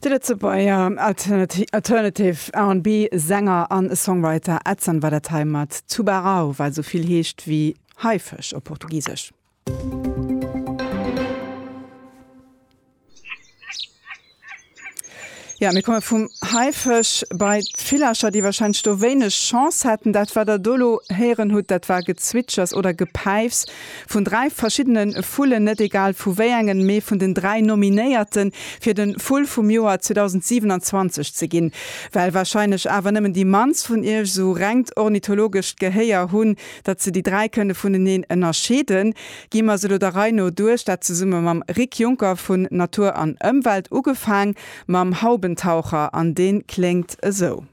De Lëtzebuerger Alternative R&B Sänger a Songwriter Edson war dat hei mat Tubarão, wat esou vill heescht wéi Haifësch op Portugisesch. Ja, mir komme vum Haifësch bei d'Villercher, déi wahrscheinlech do wéineg Chance hätten. Dat, wat Der do elo héieren hutt, dat war Gezwitschers oder Gepäifs vun dräi verschiddene Vullen, net egal vu wéi engen, mee vun den dräi Nominéierten, fir de Vull vum Joer 2027 ze ginn. Well wahrscheinlech awer nëmmen déi mannst vun Iech esou rengt ornithologescht Gehéier hunn, datt se déi dräi kënne vuneneen ënnerscheeden, Gi mer se elo der Rei no duerch, dat zesumme mam Rick Junker vun Natur an Ëmwelt, ugefaang mam Haubentaucher, an deen kléngt esou.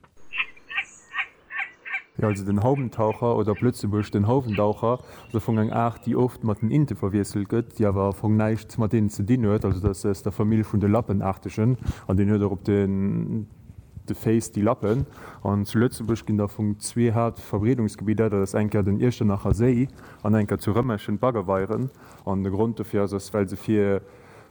Jo, also den Haubentaucher, oder op Lëtzebuergesch den Hauwendaucher, ass am Fong eng Aart, déi oft mat den Inte verwiesselt gëtt, déi awer am Fong näischt mat deenen ze dinn huet. Also dat ass aus der Famill vun de Lappenaartegen, an deen huet och op de Féiss déi Lappen. An zu Lëtzebuerg ginn der am Fong zwee Haaptverbreedungsgebidder, dat ass eng Kéier den Iechternacher Séi, An enker zu Rëmerschen d'Baggerweieren. An de Grond dofir ass, ass well se fir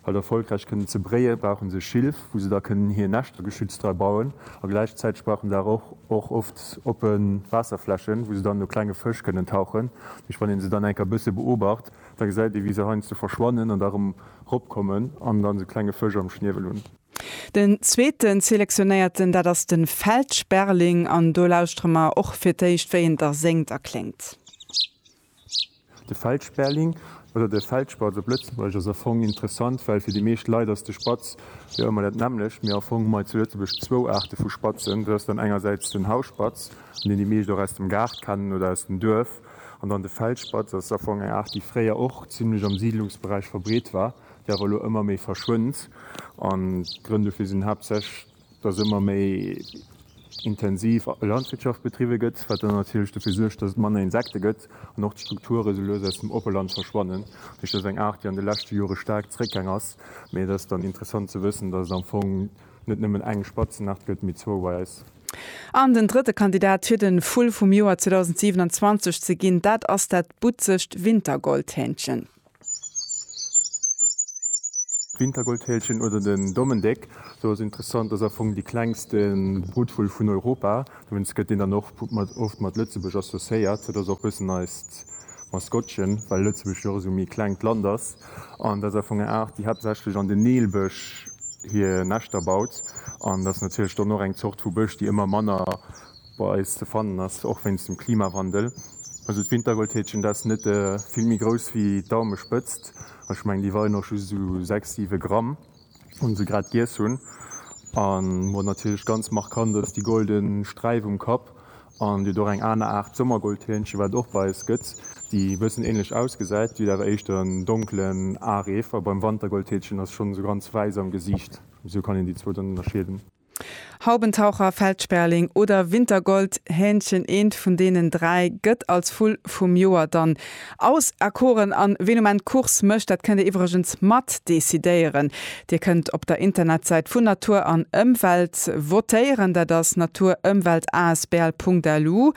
halt erfolgräich kënnen ze bréien, brauchen se Schilf wou se da kënnen hier Näschter geschützt dra bauen. A gläichzäiteg brauchen se awer och oft oppen Waasserflächen wou se dann no klenge Fësch kënnen tauchen. Duerch wann een se dann enker bësse beobacht, da gesäit ee wéi se heiansdo verschwannen an da rëm rop kommen an dann sou klenge Fësch am Schniewel hunn. Den zweeten Selektionéierten, dat ass de Feld Sperling an do lauschtere mer och fir d'éischt, wéi en da séngt a kléngt. De Feld Sperling, oder de Feldspatz op Lëtzebuergesch, ass am Fong interessant, well fir déi meescht Leit ass de Spatz jo ëmmer dat nämmlecht. Mee am Fong hu mer zu Lëtzebuerg zwou Aarte vu Spatzen. Dat ass dann engersäits den Hausspatz, deen déi meescht och aus dem Gaart kennen oder aus dem Duerf. An dann de Feldspatz ass am Fong eng Aart, déi fréier och zimlech am Siidlungsberäich verbreet war, déi awer elo ëmmer méi verschwënnt. An d'Grënn dofir sinn haaptsächlech, dass ëmmer méi intensiv Landwirtschaft betriwwe gëtt, wat dann natierlech dofir suergt, dass et manner Insekte gëtt an och d'Strukture sou lues aus dem Oppeland verschwannen. Dat heescht, dat ass eng Aart, déi an de leschte Jore staark zeréckgaang ass. Mee et ass dann interessant ze wëssen, dass et am Fong net nëmmen eng Spatzenaart gëtt, mee zwouweis. An den drëtte Kandidat fir de Vull vum Joer 2027 ze ginn, dat ass dat butzegt Wintergoldhähnchen. D'Wintergoldfeelchen oder den Dommendéck, sou ass interessant, ass am Fong dee klengste Brutvull vun Europa. Dowéinst gëtt deen dann och oft mat Lëtzebuerg associéiert. Dat ass och e bëssen eist Maskottchen, well Lëtzebuerg jo och esou méi e klengt Land ass. An dat ass am Fong eng Aart, déi haaptsächlech an den Nilbësch hir Näschter baut. An dat ass natierlech dann och eng Zort vu Bësch, déi ëmmer manner bei eis ze fannen ass, och wéinst dem Klimawandel. Also d'Wintergoldhäkchen, dat ass net vill méi grouss wéi d'Daumespëtzt. Ech mengen, déi weien och just esou sechs, siwe Gramm, wann se grad giess hunn. A wat natierlech ganz markant ass, déi golde Sträif um Kapp. An et gëtt och eng aner Aart Sommergoldhähnchen, wat et och bei eis gëtt, déi e bëssen änlech ausgesäit, déi huet awer éischter en donkelen Areef. A beim Wantergoldhäkchen ass se schonn esou ganz wäiss am Gesiicht. Esou kann een déi zwou dann ënnerscheeden. Haubentaucher, Feldsperling oder Wintergold, Hähnchen, eent vun deenen dräi gëtt als Vull vum Joer dann auserkoren. An ween um Enn d'Course mécht, dat kënnt Dir iwwregens mat decidéieren. Dir kënnt op der Internetsäit vun Natur an Ëmwelt votéieren, dat ass naturëmweltasbl.lu.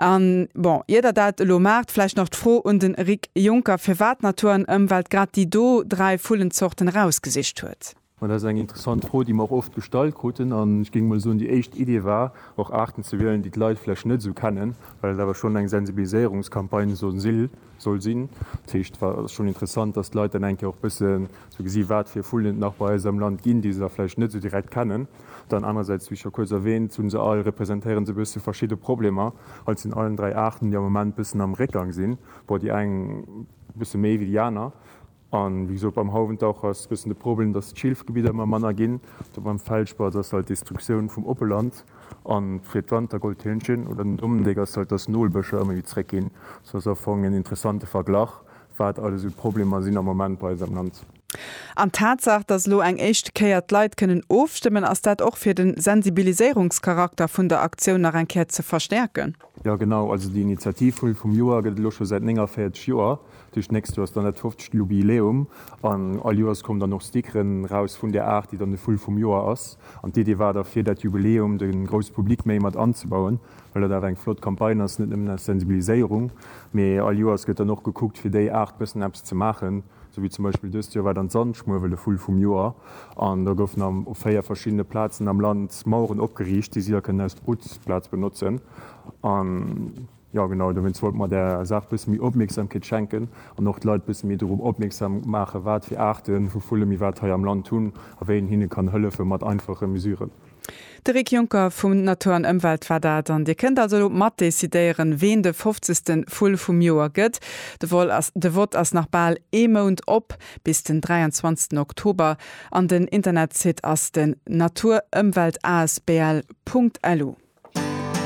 An bon, ier Der dat elo maacht, vläicht nach d'Fro un de Rik Jonker, firwat Natur an Ëmwelt grad déi do dräi Vullenzorten erausgesicht huet. Ma dat ass eng interessant Fro, déi mer och oft gestallt kruten. An ech géing emol soen, déi éischt Idee war, och Aarten ze wielen, déi d'Leit vläch net esou kennen, well et awer schonn eng Sensibiliséierungscampagne soll si soll sinn. Dat heescht, et ass schonn interessant, dass d'Leit dann eng Kéier och bësse sou gesi wat fir Vullen et nach bei eis am Land ginn, déi se da vläicht net esou direkt kennen. Dann anerersäits, wéi scho kuerz erwäänt, hunn se all, representéieren se bësse verschidde Problemer. Alt sinn allen dräi Aarten, déi am Moment bëssen am Réckgang sinn, bon, déi eng bësse méi wéi déi aner. A wéi gesot, beim Hauwentaucher ass e bëssen de Problem, datt d'Schilfgebidder ëmmer manner ginn. Do beim Feldspaß ass halt d'Destruktioun vum Oppeland. A fir d'Wantergoldhündchen oder den Dommendéck ass halt, datt d'Nolbëscher ëmmer méi zeréckginn. Sou ass am Fong en interessante Verglach, wat alles esou d'Problemer sinn am Moment bei eis am Land. An d'Tatsaach, datt elo eng éischte Kéier d'Leit kënnen ofstëmmen, ass dat och fir de Sensibiliséierungscharakter vun der Aktioun nach eng Kéier ze verstäerken? Jo, genau. Also déi Initiativ Vull vum Joer gëtt et elo scho säit 49 Joer. Duerch d'nächst Joer ass dann dat 50. Jubiläum an all Joers kommen dann och Stickeren raus vun där Aart, déi dann de Vull vum Joer ass. An d'Idee war da fir dat Jubiläum de grousse Public méi mat anzebauen, well dat awer eng flott Campagne ass, net nëmmen aus Sensibiliséierung, mee all Joers gëtt dann och gekuckt fir déi Aart bëssen eppes ze maachen. Sou wéi zum Beispill dëst Joer war dann d'Sandschmuewel de Vull vum Joer an do goufen dann op 4 verschiddene Plazen am Land Maueren opgeriicht, déi si da kënnen aus Brutplaz benotzen an. Jo genau, dowéinst wollte mer där Saach bësse méi Opmierksamkeet schenken an och d'Leit bësse méi dorop opmierksam maachen, wat fir Aarten vu Vulle mir wat hei am Land hunn a wéi een hinne kann hëllefe mat einfache Mesuren. De Rick Juncker vum Natur an Ëmwelt war dat. An Dir kënnt also elo mat decidéieren, ween de fofzegste Vull vum Joer gëtt. De Vol ass, de Vott ass nach bal ee Mount op, bis den 23 Oktober. An den Internetsite ass den natur-ëmwelt-asbl.lu.